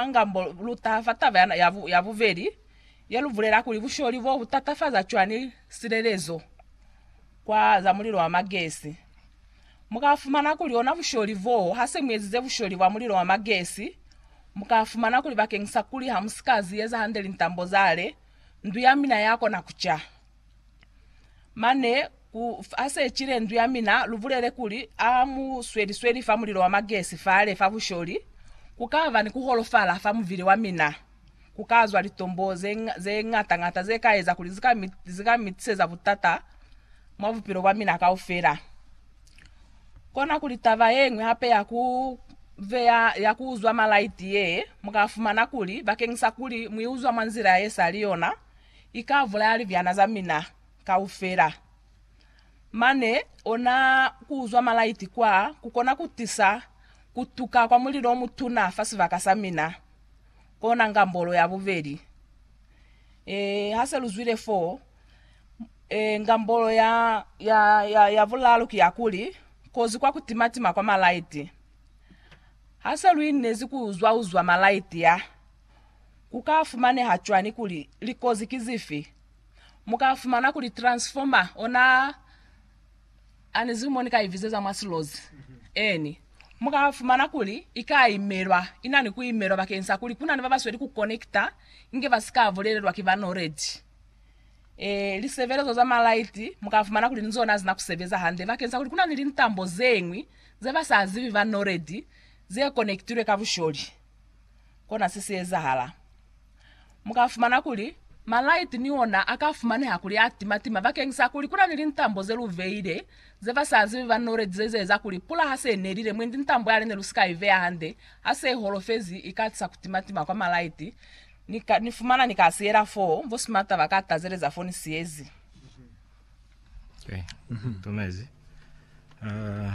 Hanga mbo lu taha fa taba ya bubeli ye lu bulela kuli busholi bo bu tatafaza cwani silelezo kwa za mulilo wa magesi, mu ka fumana kuli ona busholi boo ha se mu ezize busholi bwa mulilo wa magesi. Mu ka fumana kuli bakeñisa kuli ha mu si ka zi eza hande lintambo zale, ndu ya mina ya kona ku ca. Mane, ku fa se cile ndu ya mina, lu bulele kuli, A mu sweli-sweli fa mulilo wa magesi fale fa busholi, ku ka ba ni ku holofala fa mubili wa mina. Ku ka zwa litombo ze, ze ñata-ñata ze ka eza kuli zi ka mi, zi ka mi tiseza butata mwa bupilo bwa mina kaufela. Kona kuli taba ye ñwi hape ya ku beya, ya ku uzwa malaiti ye, mu ka fumana kuli, bakeñisa kuli mu i uzwa mwa nzila ye sa li yona, I ka vulaya libyana za mina kaufela. Mane ona ku uzwa malaiti kwa ku kona ku tisa ku tuka kwa mulilo o mutuna fa sibaka sa mina, kona ngambolo ya bubeli. E, ha se lu zwile fo, e, ngambolo ya, ya, ya, ya bulalu ki ya kuli, kozi kwa ku timatima kwa malaiti. Ha se lu inezi ku uzwa-uzwa malaiti ya. Ku ka fumaneha cwani kuli likozi ki zifi? Mu ka fumana kuli transfoma ona a ni zwi mo ni ka i vizeza mwa silozi. Eeni. Mu ka fumana kuli i ka imelwa, i na ni ku imelwa bakeni sa kuli ku na ni ba ba sweli ku konekita inge ba si ka bulelelwa ki ba noreti. Ee, lisebelezo za malaiti mu ka fumana kuli ni zona ha zi na ku sebeza hande bakeni sa kuli ku na ni lintambo ze ñwi ze ba sa zibi ba noreti ze konekitilwe ka busholi. kona se si ezahala. Mu ka fumana kuli malaiti ni ona a ka fumaneha kuli a timatima bakeñisa kuli ku na ni lintambo ze lu veile ze ba sa zibi ba noledi ze zeza kuli pula ha se nelile, mwendi ntambo yale ne lu si ka i veya hande ha se i holofezi i ka tisa ku timatima kwa malaiti. Ni ka ni fumana ni ka siyela foo, bo Smarter ba ka tazeleza fo ni siyezi. Okay. Tomezi. Uh,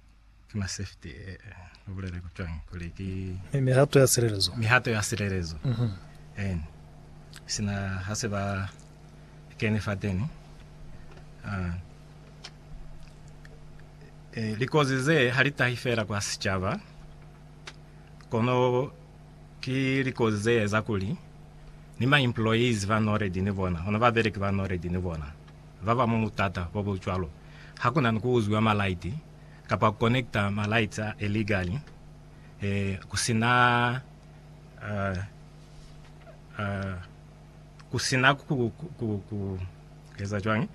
Ki ma safety u bulele kutwani kuli ki mihato ya silelezo mihato ya silelezo mhm. en sina ha se ba kene fa teni ah. e, eh, likozi ze ha li tahi fela kwa sicaba kono ki likozi ze eza kuli ni ma employees ba noredi ni bona hona ba bereki ba noredi ni bona Ba ba mwa mutata bo bo cwalo ha ku na ni ku uzwiwa malaiti kapa ku konekita malaiti a iligali ku si na ku si na ku eza cwañi?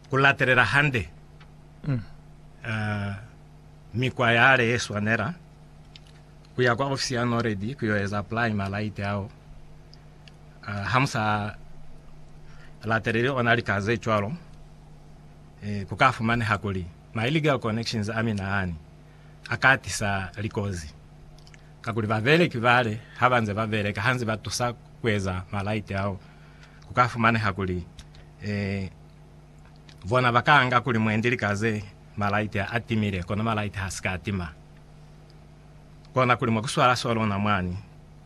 Ku latelela hande mikwa yale ye swanela, ku ya kwa ofisi ya NORAD ku yo eza apply malaiti ao. Ha mu sa lateleli ona lika ze cwalo, ku ka fumaneha kuli ma illegal connections a mina yani a ka tisa likozi. Kakuli babeleki bale ha ba nze ba beleka ha nze ba tusa ku eza malaite ao, ku ka fumaneha kuli bona ba ka anga kuli mwendi lika ze malaite a timile, kono malaite ha si ka tima. Kona kuli mwa ku swala swa lona mwani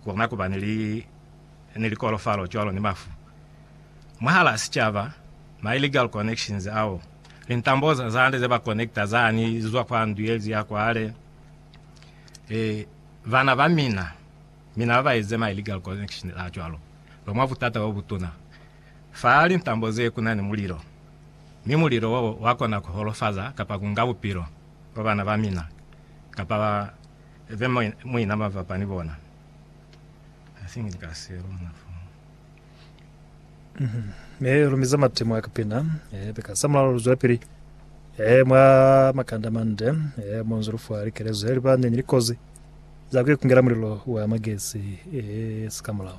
kona ku ba ni likolofalo cwalo ni mafu. Mwahalaa sicaba, ma illegal connections ao, lintambo za zande ze ba connecta zani zwa kwa ndu ye ziya kwale, eeh, bana ba mina, mina ba ba ezize ma illegal connections a cwalo, ba mwa butata bo butuna. Fa lintambo ze kuna ni mulilo, mi mulilo wo wa kona ku holofaza kapa ku nga bupilo bwa bana ba mina. kapa ba be mu ina ba bapa ni bona. I think ni ka se luna for. Me lumiza matemo a kapena, eh, beka sa mulalo luzwa pili. Eh, mwa makanda mande, eh, monzo lufwa likelezo ya liba neni likozi za kuikungela mulilo wa magesi, eh, sikamulao.